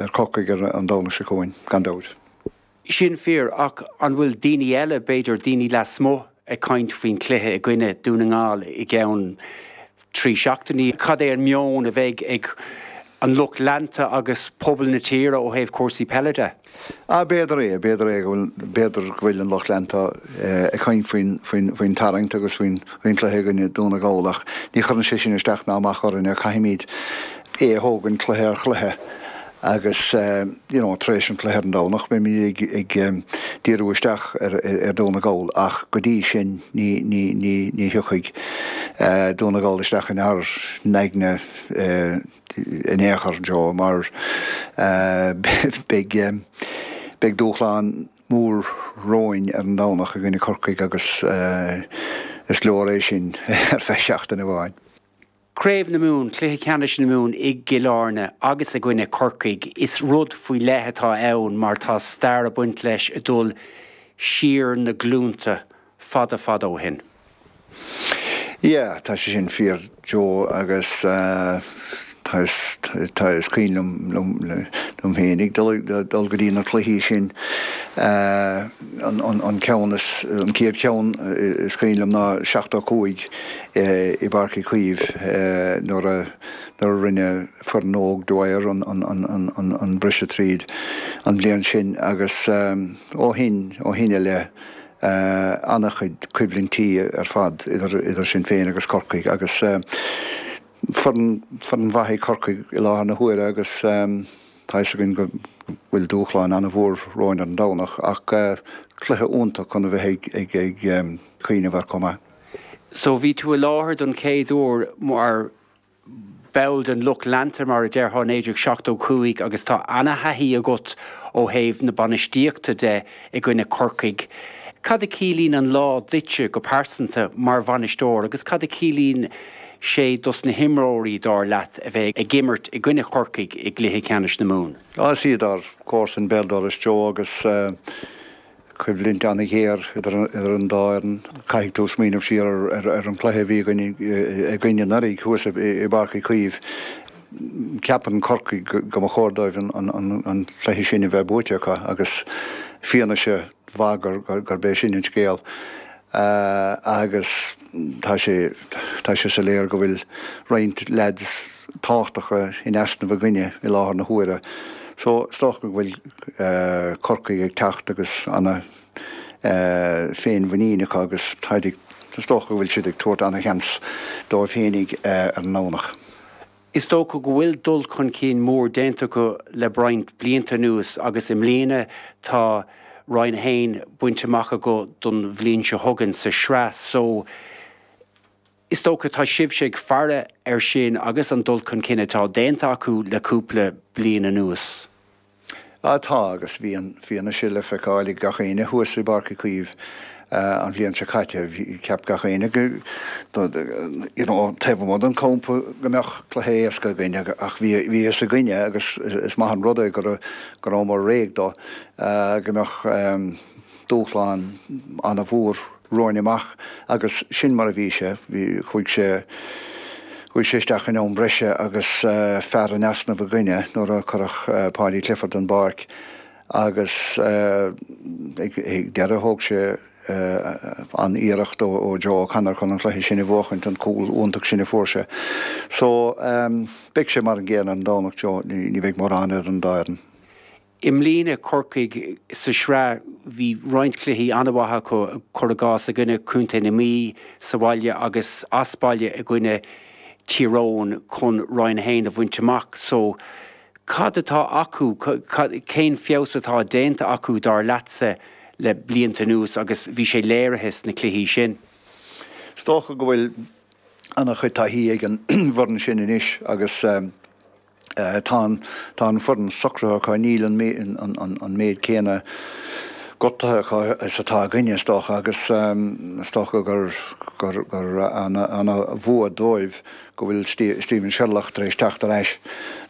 ar Chorcaigh ar an Domhnach seo chugainn, gan dabht. Sin fíor, ach an bhfuil daoine eile, b'fhéidir daoine lasmuigh, ag caint faoin chluiche i gcoinne Dhún na nGall i gceann trí seachtainí? Cad é an meon a bheidh ag an lucht leanta agus pobal na tíre ó thaobh cúrsaí peile de? Ah, b'fhéidir é, b'fhéidir é go bhfuil, b'fhéidir go bhfuil an lucht leanta ag caint faoin, faoin, faoin tarraingt agus faoin, faoin chluiche i gcoinne Dhún na nGall ach ní chuireann sé sin isteach ná amach orainne, caithfimid, é a thógaint cluiche ar chluiche agus you know tar éis an chluiche ar an Domhnach beimid ag díriú isteach ar Dhún na nGall ach go dtí sin ní ní ní ní thiocfaidh Dún na nGall isteach inár n-aigne in aon chor Joe mar beidh beidh dúshlán mór romhainn ar an Domhnach i gcoinne Corcaigh agus is leor é sin ar feadh seachtaine amháin. Craobh na Mumhan, Cluiche Ceannais na Mumhan i gCill Airne agus i gcoinne Corcaigh, is rud faoi leith atá ann mar tá stair ag baint leis ag dul siar na glúnta, fada fada ó shin. Yeah, tá sé sin fíor Joe agus tá, is cuimhin liom féinig ag dul go dtí na cluichí sin. an ceann is, an chéad cheann is cuimhin liom ná seachtó a cúig i bPáirc Uí Chaoimh nuair a, nuair a rinne foireann óg Dwyer an briseadh tríd an bhliain sin agus ó shin, ó shin i leith ana-chuid coimhlintí ar fad idir, idir sinn féin agus Corcaigh agus foireann, foireann mhaith í Corcaigh i láthair na huaire agus. Tá a fhios againn go bhfuil dúshlán an-mhór romhainn ar an Domhnach ach cluiche iontach chun a bheith ag cuimhneamh air chomh maith. So bhí tú i láthair don chéad uair mar ball den lucht leanta mar a déarfá i 1975 agus tá ana-thaithí agat ó thaobh na bainistíochta de. i gcoinne Corcaigh. Cad a chiallaíonn an lá duitse go pearsanta mar bhainisteoir agus cad a chiallaíonn sé dos na himreoirí, dar leat, a bheith ag imirt i gcoinne Chorcaigh i gcluiche ceannais na Mumhan? Is iad ár gcomharsain béal dorais Joe agus coimhlint an-ghéar idir an dá fhoireann. Caithfidh tú smaoineamh siar ar an cluiche a bhí againn anuraidh thuas i bPáirc Uí Chaoimh. Ceapann Corcaigh go mba chóir dóibh an cluiche sin a bheith buaite acu agus fianaise mhaith gurb é sin an scéal agus tá sé, tá sé soiléir go bhfuil roinnt leaids tábhachtacha in easnamh againne i láthair na huaire. So is dócha go bhfuil Corcaigh ag teacht agus ana féinmhuinín acu agus is dócha go bhfuil siad ag tabhairt ana sheans dóibh fhéinig ar an nDomhnach. Is dócha go bhfuil dul chun cinn mór déanta acu le roinnt blianta anuas agus i mbliana tá Roinn 1 bainte amach acu don bhliain seo chugainn sa tsraith só is dócha tá sibhse ag faire ar sin agus an dul chun cinn atá déanta acu le cúpla bliain anuas. Ah tá, agus bhí an fianaise le feiceáil ag gach éinne thuas i bPáirc Uí Chaoimh an bhliain seo caite. Cheap gach éinne go, you know, taobh amuigh den campa go mbeadh cluiche éasca againn ach bhí a fhios againne agus is maith an rud é go rabhamar réidh do, go mbeadh. dúshlán an-mhór romhainn amach agus sin mar a bhí sé. Chuaigh sé isteach in am breise agus fear in easnamh againne nuair a cuireadh Paudie Clifford den bpáirc agus ag deireadh thóg sé an-iarracht ó Joe O'Connor chun an cluiche sin a bhuachaint, an cúl iontach sin a fuair sé. So, beidh sé mar an gcéanna an Domhnach seo, ní bheidh mórán idir an dá fhoireann. I mbliana Corcaigh sa tsraith bhí roinnt cluichí an-mhaith acu, cur i gcás i gcoinne Contae na Mí sa bhaile agus as baile i gcoinne Tír Eoghain chun Roinn 1 a bhaint amach. So, cad atá acu, cén feabhas atá déanta acu dar leatsa le blianta anuas agus bhí sé léirithe sna cluichí sin. Is dócha go bhfuil an-chuid taithí ag an bhfoireann sin anois agus. Tá an foireann socraithe acu, níl an méid céanna gortaithe acu is atá againne, is dócha, agus is dócha gur an-bhua dóibh go bhfuil Stephen Sherlock tar éis teacht ar ais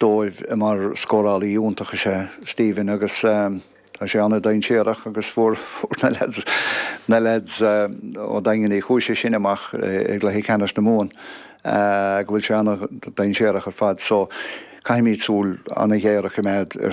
dóibh mar scórálaí iontach is é Stephen agus, Tá sé an-dainséarach agus fuair na leaids, na leaids ó Dhaingean Uí Chúise sin amach i gcluiche ceannais na Mumhan go bhfuil sé an-dainséarach ar fad so caithfimid súil an-ghéar a choimeád air.